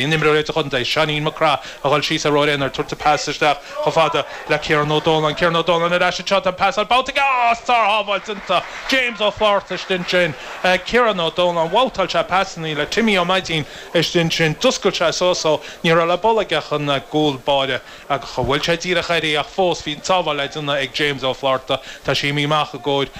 Bhí an imreoir de chontae, Seáinín Mac Craith, a dhul síos ar ruathar aonair, tugtha pas isteach chomh fada le Kieran Ó Dónláin. Kieran Ó Dónláin ar ais anseo, tá an pas ar ball tagtha is sár-shábháilt déanta, James Ó Flaithearta istigh ansin. Kieran Ó Dónláin, bhabhtáil sé pas ina dhiaidh le Timmy Ó Maidín istigh ansin. D'fhoscail sé suas ó ní raibh le bualadh aige ach an cúl báire agus bhuail sé díreach air í ach fós bhí an tsábháil le déanamh ag James Ó Flaithearta. Tá sé imithe amach i gcomhair,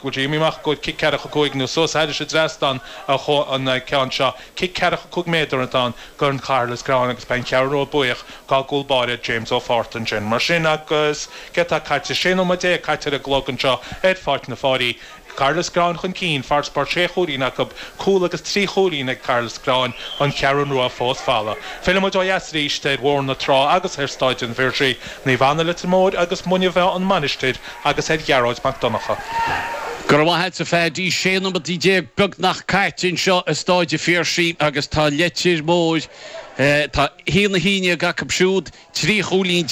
go bhfuil sé imithe amach i gcomhair cic ceathracha cúig nó suas thar an trasnán an ceann seo. Cic ceathracha 5 méadar atá ann go Chathair Loistreáin agus beidh an Cheathrú Rua buíoch dá gcúl báire James Ó Flaithearta ansin. Mar sin agus céard atá caite? 16 nóiméad caite ar an gclog anseo ar Pháirc na Páirí. Cathair Loistreáin chun cinn, farasbarr sé chúilín acu, cúl agus trí chúilín ag Cathair Loistreáin, an Cheathrú Rua fós folamh. Fillfidh muid ó dheas arís ar Bhóthar na Trá agus ar Stáid an Phiarsaigh, Naomh Anna, Leitir Móir agus Muine Mheá, an Mhainistir, agus ar Ghearóid Mac Donncha. Go raibh maith a't a Phaddy, 16 nóiméad beagnach caite anseo i Stáid an Phiarsaigh agus tá Leitir Móir, tá haon a haon déag acu siúd, 13 chúilín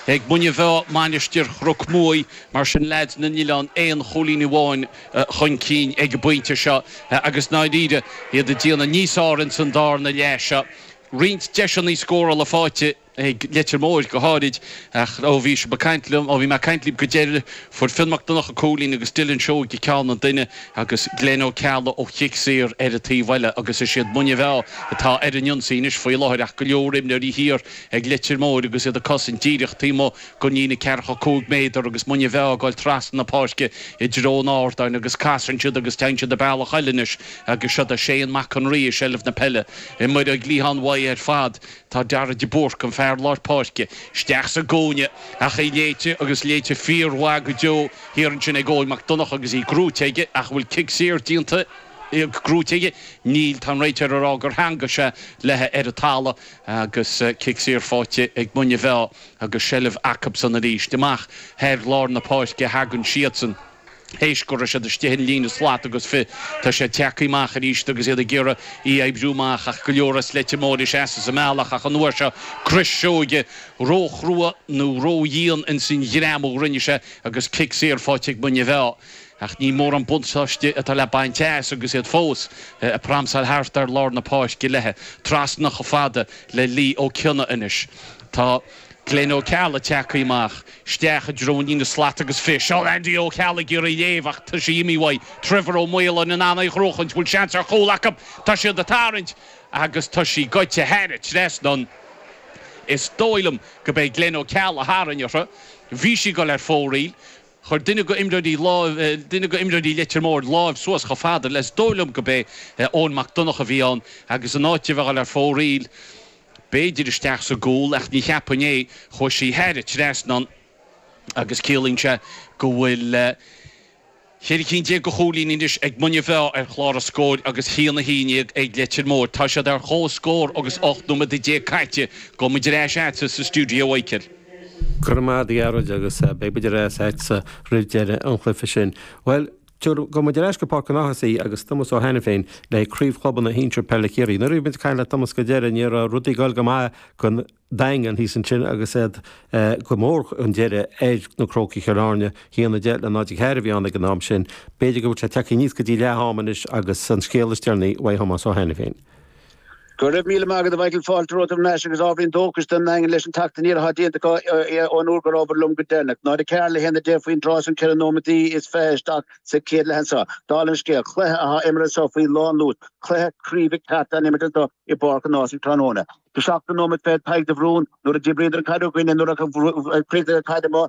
ag Muine Mheá, Mainistir Chnoc Muaí, mar sin leaids na nOileán aon chúilín amháin chun cinn ag an bpointe seo agus ndáiríre iad ag déanamh níos fearr ins an darna leath seo. Roinnt deiseanna scórála faighte. ag Leitir Móir go háirid, ach ó bhí sibh ag caint liom, ó bhí mé ag caint libh go deireadh, fuair Fionn Mac Donnacha cúilín agus Dylan Seoige ceann an duine agus Glen Ó Ceallaigh ó chic saor ar an taobh eile agus is iad Muine Mheá atá ar an ionsaí anois faoi láthair ach go leor imreoirí thiar ag Leitir Móir agus iad ag cosaint díreach taobh amuigh den líne ceathracha cúig méadar agus Muine Mheá ag dul trasna na páirce i dtreo an ardáin agus casann siad agus téann siad a bealach eile anois agus seo é Seán Mac an Rí i seilbh na peile ar an gcliathán uaim ar fad. Do Darragh de Búrc, an fear lár páirce, isteach sa gcúinne ach í léite agus léite fíormhaith go deo thiar ansin ag Eoin Mac Donnacha agus í grúite aige ach an bhfuil cic saor déanta grúite aige? Níl, tá an réiteoir ag rá gur theagmhaigh sé léi ar an talamh agus cic saor faighte ag Muine Mheá agus seilbh acusan arís. Amach thar lár na páirce a thagann siadsan. Théis go raibh siad istigh ar an líne slat agus fiche, tá siad tagtha amach arís agus iad ag iarraidh í a oibriú amach ach go leor as Leitir Móir ina seasamh sa mbealach ach an uair seo Chris Seoige róchrua nó ródhian ins an ghreim a rinne sé agus cic saor faighte ag Muine Mheá. Ach ní mórán buntáiste atá le baint as agus iad fós ag pramsáil thart ar lár na páirce léithe. Trasna chomh fada le Liam Ó Cionnaith anois tá. Glenn Ó Ceallaigh tagtha amach isteach i dtreo na slat agus fish ó Andy Ó Ceallaigh ag iarraidh léim ach tá sí imithe uaidh, Trevor Ó Maoláin in ann í a chrochadh an bhfuil seans ar chúl acu tá siad ag tarraingt agus tá sí gaibhte thar an trasnán is dóigh liom gurb é Glenn Ó Ceallaigh a tharraing uirthi bhí sí ag dul ar fóraoil chuir duine de imreoirí duine de imreoirí Leitir Móir láimh suas chomh fada le is dóigh liom gurb é Eoin Mac Donnacha bhí ann agus in áit di bheith dul ar fóraoil b'fhéidir isteach sa gcúl ach ní cheapfainn é, chuaigh sí thar an trasnán agus ciallaíonn sé go bhfuil ceithre cinn déag de chúilíní anois ag Muine Mheá ar chlár an scóir agus haon a haon dhéag ag Leitir Móir. Tá siad ar comhscór agus 18 nóiméad caite. Gabhfaidh muid ar ais agatsa sa stiúideo, a Mhichíl. Go raibh maith agat a Ghearóid agus beidh muid ar ais agatsa roimh deireadh an chluiche sin. Bhuel, Gabhfaidh muid ar ais go Páirc an Ághasaigh agus Tomás Ó hAiniféin le craobh chlubanna shinsir peile Chiarraí. Nuair a bhí muid ag caint le Tomás go deireadh ní raibh rudaí ag goil go maith don Daingean thíos ansin agus iad go mór chun deiridh ar na Crócaigh Chill Airne. Haon a deich le náid a ceathair a bhí ann ag an am sin. B'fhéidir go bhfuil sé tagtha aníos go dtí leath ama anois agus an scéal is deireanaí uaidh Thomás Ó hAiniféin. Go raibh míle maith agat a Mhichíl Fáilte romhat thar n-ais agus ábhairín dóchais don Daingean leis an teacht aniar atá déanta acu ón uair go rabhabhair liom go deireanach. Náid a ceathair le haon a deich faoin dtráth san 4 nóiméadaí is 20 isteach sa chéad leath anso. Dála an scéil, cluiche atá imeartha anseo faoi lánluas, cluiche craoibhe ceart á imirt anseo i bPáirc an Ághasaigh tráthnóna. Sa seachtú nóiméad fichead Tadhg de Brún nuair a d'oibríodar an chaid againn é nuair a chríochnaigh an chaid amú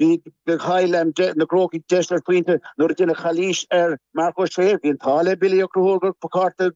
Bíodh gur chaill na Crócaigh deis ar phointe nuair a deineadh calaois ar Marc Ó Sé. Bhí an t-ádh le Billy Ó Conchúir gurb é cárta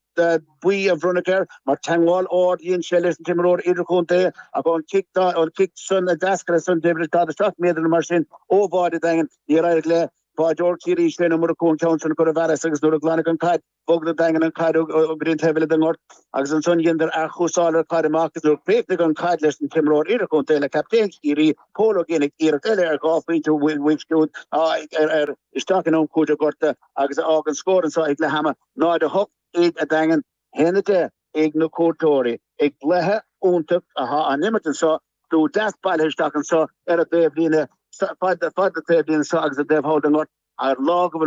buí a bronnadh air mar teangmháil ard a dhein sé leis an t-imreoir idirchontae ach ón chic san a d'eascair as san go deimhin 47 méadar mar sin ó bháide an Daingin, níor éirigh le báideoir Chiarraí Shane Ó Murchú an ceann sin a chur i bhfearas agus nuair a glanadh an chaid, Bhog an Daingean an chaid go dtí an taobh eile den ngort agus ansan dheineadar athchúrsáil ar an gcaid amach is nuair chríochnaigh an chaid leis an t-imreoir idirchontae le captaen Chiarraí, Pól Ó Géibheannaigh iarracht eile ar dhá phointe uaidh siúd a fhir isteach in am cúitimh gortaithe agus a fhágann scór anso ag leath am 0-8 ag an Daingean. 1-10 ag na cuairteoirí i gcluiche iontach atá á imirt anso slua deas bailithe isteach anso ar an dtaobhlíne fad na taobhlíne anso agus an taobh thall den ngort ar lá go bhfuil